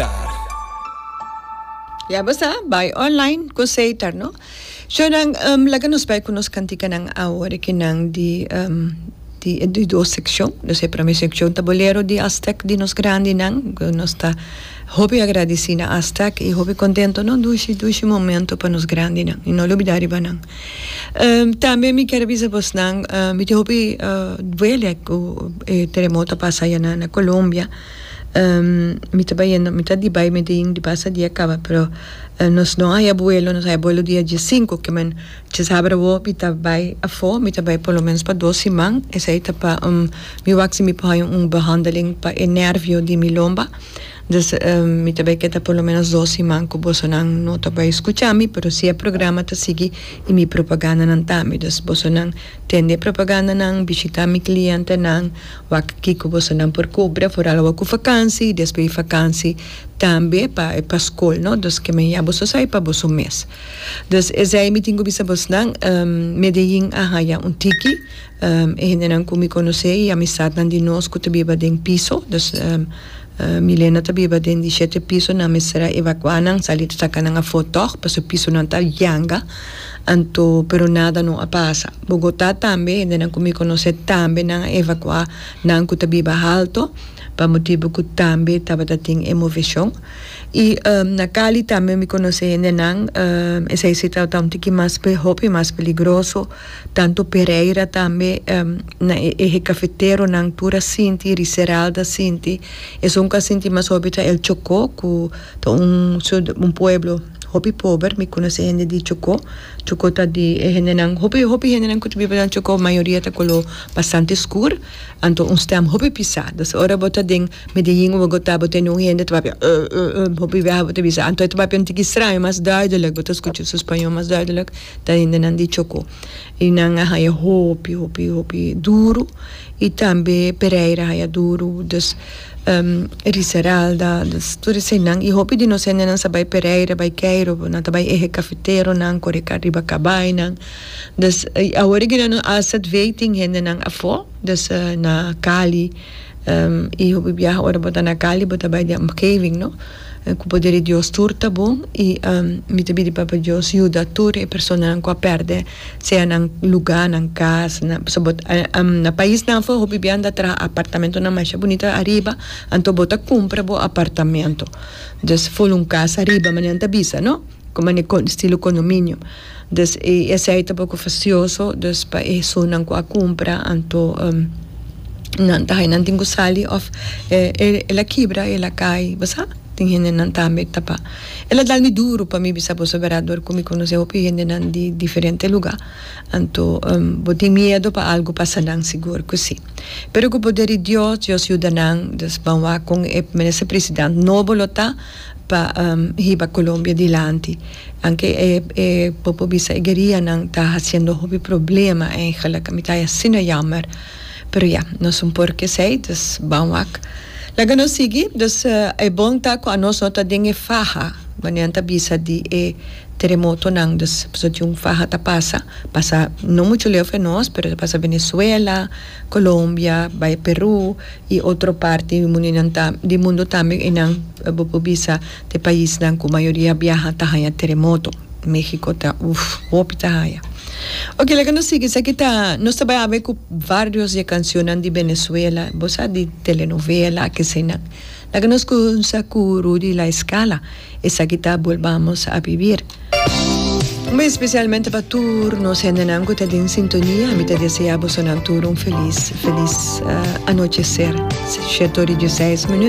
Seitar. Ya bo sa, bai online ku Seitar no. So nan laga nos bai ku nos kantikanan awor ki nan di di dos sekshon. Nos e prome sekshon ta bolero di Astec di nos grandinan ku nos ta hopi agradisí na Astec i hopi kontentu no dushi dushi momentu pa nos grandinan i no lubidá riba nan. Tambe mi kier a bisa bos nan mi tin hopi duele ku e teremoto a pasa ayina na Colombia. mi ta bayendo mi ta di bai Medin di pasa dia caba pero nos no haya vuelo nos haya vuelo dia diesinco kimen chez haber awo mi ta bai afo mi ta bai por lo menos pa dos siman esai ta pa un mi wak si mi por haña un behandeling pa e nervio di mi lomba dus mi ta bai keta por lo menos dos siman cu bosonan no ta bai scucha mi pero si e programa ta sigui y mi propagandanan ta mi dus bosonan tende e propagandanan bishita mi clientenan. Wak kiko bosonan por kubra for al awa ku fakansi i despues di fakansi tambe pa pa skol no dus ke mehia boso sa i pa boso mes. Dus esei mi tin ku bisa bosnan Medellin a haña un tiki e hendenan ku mi konosé i amisatnan di nos ku ta biba den piso dus Milena ta biba den di shete piso nan mester a evakuá nan sali ta saka nan afó tòg pasobra pisonan ta yanga. Anto, pero nada no a pasa. Bogotá tambe, hendenan ku mi konosé tambe nan a evakuá nan ku ta biba halto, pa motibu ku tambe tabata tin e moveshon. I na Cali tambe mi konosé hendenan, esei si ta un tiki mas, hopi mas peligroso. Tantu Pereira tambe, na e eje kafeteronan tur a sinti, Riseralda a sinti. Esun ku a sinti mas hopi ta El Chokó ku ta un, un pueblo. Hopi pober, mi conoce hende di Chocó, Chocó ta di e hendenan, hopi hopi hendenan cu ta biba na Chocó mayoria ta color bastante scur, anto un stem hopi pisa, dus ora bo ta den Medellin o Bogota bo ta eni un hende ta papia uh uh uh hopi biaha bo ta bisa anto e ta papia un tiki straño mas duidelijk bo ta scucha su spañol mas duidelijk ta hendenan di Chocó y nan a haya hopi hopi hopi duro y tambe Pereira a haya duro. Riseralda, dus, tur esei nan i hopi di nos hendenan sa bai Pereira, bai Keiro, bo nan ta bai ehe kafeteronan, kore ka riba kabainan. Dus, i awor e gina nos asset vei tin hendenan afó, dus na Cali, i hopi biaha ora bo ta na Cali bo ta bai den omgeving, no? Ku poder di Dios tur ta bon i mi ta bidi Papa Dios yuda tur e personanan ku a pèrdè. Sea nan lugá, nan kas, pasobra bo ta, na paisnan afó hopi biaha ta traha apartamentonan masha bunita ariba, anto bo ta kumpra bo apartamento. Dus ful un kas ariba, mane nan ta bisa, no? Kuma ne kon, estilo kondominio. Dus e esei ta poko fasioso, dus pa e hesunnan ku a kumpra anto nan ta hai, nan tin ku sali òf e la kibra, e la kai, bo sa? Tin hendenan tambe ta pa. El a dal mi duru pa mi bisa, Bo saber Edward ku mi konosé hopi hendenan di diferente lugá, anto bo tin miedu pa algu pasa nan? Sigur ku si. Pero ku poder di Dios, Dios yuda nan, dus ban wak kon e minister president nobo lo ta pa hiba Colombia dilanti. Anke e popo bisa e guerianan ta hasiendo hopi problema, eigenlijk. Mi ta haya asina yammer. Pero ya, nos un por k'esei, dus ban wak. Laga nos sigui, dus e bon ta ku anos no ta den e faha, bo nian ta bisa di e teremotonan, dus pasobra tin un faha ta pasa, pasa no muchu leu for nos, pero ta pasa Venezuela, Colombia, bai Peru i otro parti di mundu tambe, einan bo por bisa. De paisnan cu mayoria biaha ta haya teremoto. Mexico ta uf, hopi ta haya. Oke, laga nos sigui. Esaki ta, nos ta bay habé cu varios di e cancionnan di Venezuela, bo sa di telenovela, akesinan. Laga nos cunsa cu Rudy La Escala, Esaki ta Volvamos a Vivir. Un bes specialmente pa tur nos hendenan cu ta den sintonia. Mi ta desea bosonan tur un feliz, feliz anochecer. Shet ora y dieseis minuut.